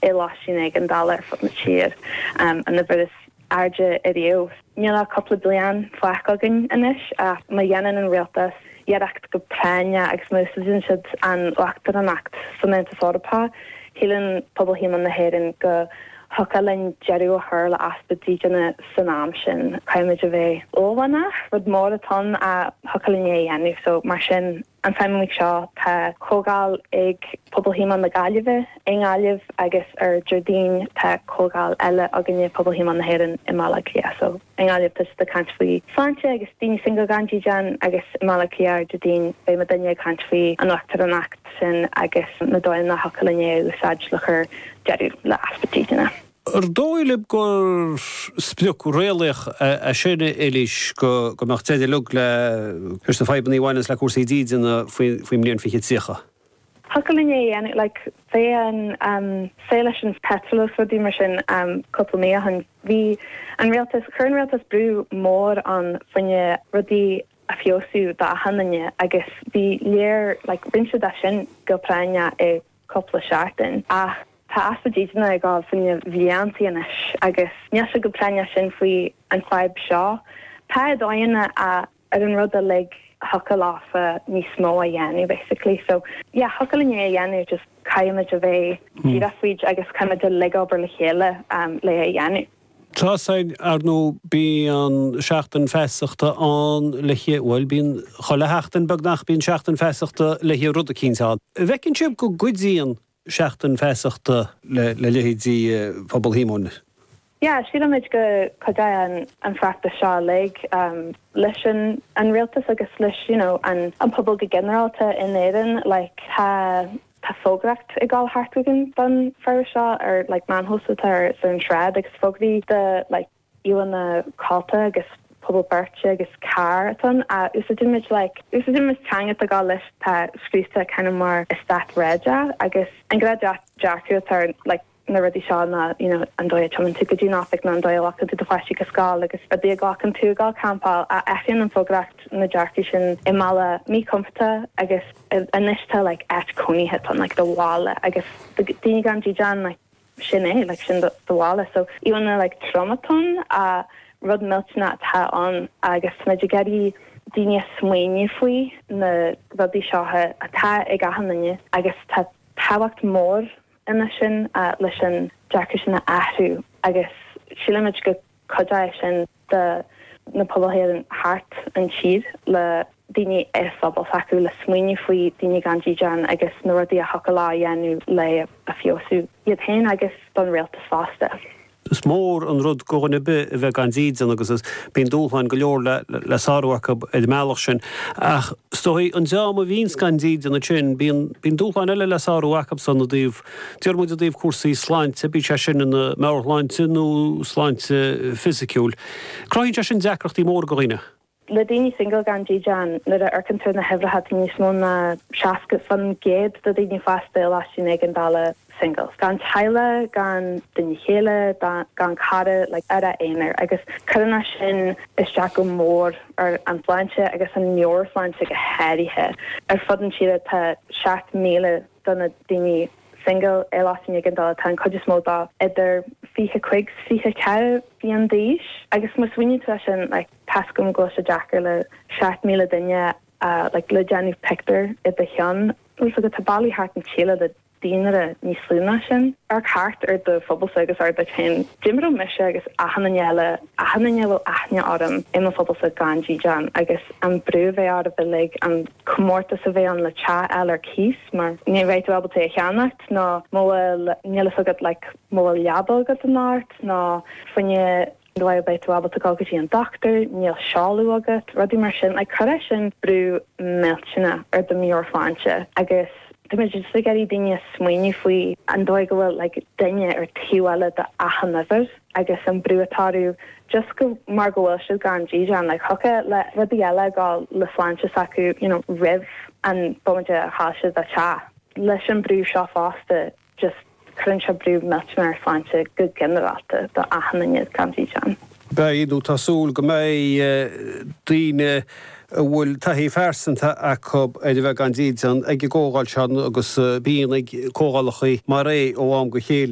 i lóistín éigeandála ar fud na tíre, an uimhir is airde ariamh. Níl ach cúpla bliain fágtha againn anois ach má dhéanann an rialtas iarracht go práinneach agus má úsáideann siad an uachtaránacht san Aontas Eorpach, shíleann Pobal Shíomóin na hÉireann go dtiocfadh linn deireadh a chur le easpa dídine san am sin. Caithfimid a bheith uaillmhianach, rud mór atá ann ach thiocfadh linn é a dhéanamh so mar sin, An tseachtain seo tá comhdháil ag Pobal Shíomóin na Gaillimhe i nGaillimh agus ar Déardaoin tá comhdháil eile againne, Pobal Shíomóin na hÉireann, i mBaile Átha Cliath. So i nGaillimh tá siad ag caint faoi shláinte agus daoine singil gan dídean agus i mBaile Átha Cliath ar Déardaoin beidh muidne ag caint faoi an uachtaránacht sin agus na dóigheanna a thiocfadh linn é a úsáid le cur deireadh le easpa dídine. An dóigh libh gur sprioc réalaíoch é sin, a Eilís, go mbeadh deireadh leis na fadhbanna a bhaineanns le cúrsaí dídine faoin mbliain 2030? Thiocfadh linn é a dhéanamh, like, faoin tslí leis an peitreal is rudaí mar sin cúpla mí ó shin, bhí an rialtas, chuir an rialtas brú mór ann fá choinne rudaí a fheabhsú d'achan duine agus bhí like, rinne siad sin go, i gcionn. cúpla seachtain ach tá easpa dídine ag dul sna blianta anois agus níl sé chomh práinneach sin faoi an fadhb seo. Tá dóigheanna ar an rud uilig thiocfadh leofa níos mó a dhéanamh basically so yeah thiocfadh linn é a dhéanamh just caithfimid a bheith díreach faoi agus caithfimid uilig obair le chéile um le é a dhéanamh. Tá, 's ar ndóigh bíonn Seachtain Feasachta ann le bhuel, bíonn chuile sheachtain, beagnach, bíonn Seachtain Feasachta le rud eicínt ann. An bhfeiceann sibh go gcuidíonn Seachtain Feasachta le leithéidí Phobal Shíomóin? Yeah, sílimid go cuidíonn an feachtas seo uilig leis an rialtas agus leis, you know, an pobal go ginearálta in Éirinn, like, tá. Tá fógraíocht ag gabháil thart againn don fheachtas seo ar like meáin shóisialta ar ar an sráid agus fógraí de like íomhánna coillte agus puball beirte agus carr atá ann a úsáidimid like úsáidimid teanga atá gá leis atá scríte kind of mar eastát réadach agus an gnáth dearcadh atá ar like na rudaí seo ná you know an dóigh a dtiomáineann tú go dtí an oifig nó an dóigh a ghlacann tú do pháistí go scoil agus an dóigh a ghlacann tú iad ag campáil athraíonn an fógraíocht na dearcaí sin i mbealach míchompordach agus anois tá like áit cónaithe tá like do bhaile agus daoine gan dídean like sin é like sin do bhaile so an-like tromchúiseach, rud millteanach atá ann agus tá muid ag iarraidh daoine a smaoineamh faoi na rudaí seo atá ag achan duine agus tá tábhacht mhór ina sin leis an dearcadh sin a athrú agus sílimid go gcuideoidh sin do na pobail féin thart an tír le daoine sa phobal s'acu le smaoineamh faoi daoine gan dídeán agus na rudaí a thiocfadh leo a dhéanamh le a feabhsú iad féin agus don rialtas fosta. Is mór an rud go dhuine ar bith a bheith gan dídean agus bíonn dúshláin go leor le sárú acub ar an mbealach sin. Ach is dóigh an dream a bhíonns gan dídean ansin, bíonn dúshláin eile le sárú acubsan i dtaobh, déarfaidh muid i dtaobh cúrsaí sláinte, bíodh sé sin ina meabhairshláinte nó sláinte fisiciúil. Cruthaíonn sé sin deacrachtaí móra go dhaoine. Le daoine single gan dídean, nuair a amharcann tú ar na huimhreacha tá níos mó ná 60% de daoine fásta i loistín éigeandála single. Gan teaghlaigh, gan duine chéile, gan cara, like ar a aonar agus cuireann a sin isteach go mór ar an tsláinte agus an meabhairshláinte go háirithe. Ar fud an tíre tá 7,000 do na daoine single i loistín éigeandála, tá an chuid is mó acu idir 25 's 24 bliain d'aois agus má smaoiníonn tú a sin like, Tá 's agam go bhfuil sé deacair le 7,000 duine a like le déanamh pictiúr i do cheann, tá 's agat tá bailí thart an tíle le daonra níos lú ná sin. Amharc thart ar do phobalsa agus abair leat féin. dá mbeadh mise agus achan duine eile achan duine a bhfuil aithne agam i mo phobalsa gan dídean agus an brú a bheidh oraibh uilig an comórtas a bheidh ann le teach a fháil ar cíos mar ní bheidh tú ábalta é a cheannacht nó má bhfuil níl fhios agat like má bhfuil leaba agat anocht nó fainne An bhfuil beidh tú ábalta gabháil go dtí an dochtúir, níl seoladh agat, rudaí mar sin like cuirfeadh sin brú millteanach ar do mheabhairshláinte agus tá muid just ag iarraidh daoine a smaoineamh faoi an dóigh go bhfuil like duine ar taobh eile de achan uimhir agus an brú atá orthu just go mar go bhfuil siad gan dídean like thiocfadh le rudaí eile a ghabháil le sláinte s'acu you know roimh an bomaite a chaill siad a teach leis an brú seo fosta just cuireann sé brú millteanach ar shláinte go ginearálta do achan duine gan dídean. Beidh, nó tá súil go mbeidh, daoine a bhfuil taithí phearsanta acu ar a bheith gan dídean ag an gcomhdháil seo agus bíonn ag comhdhálacha mar é ó am go céile.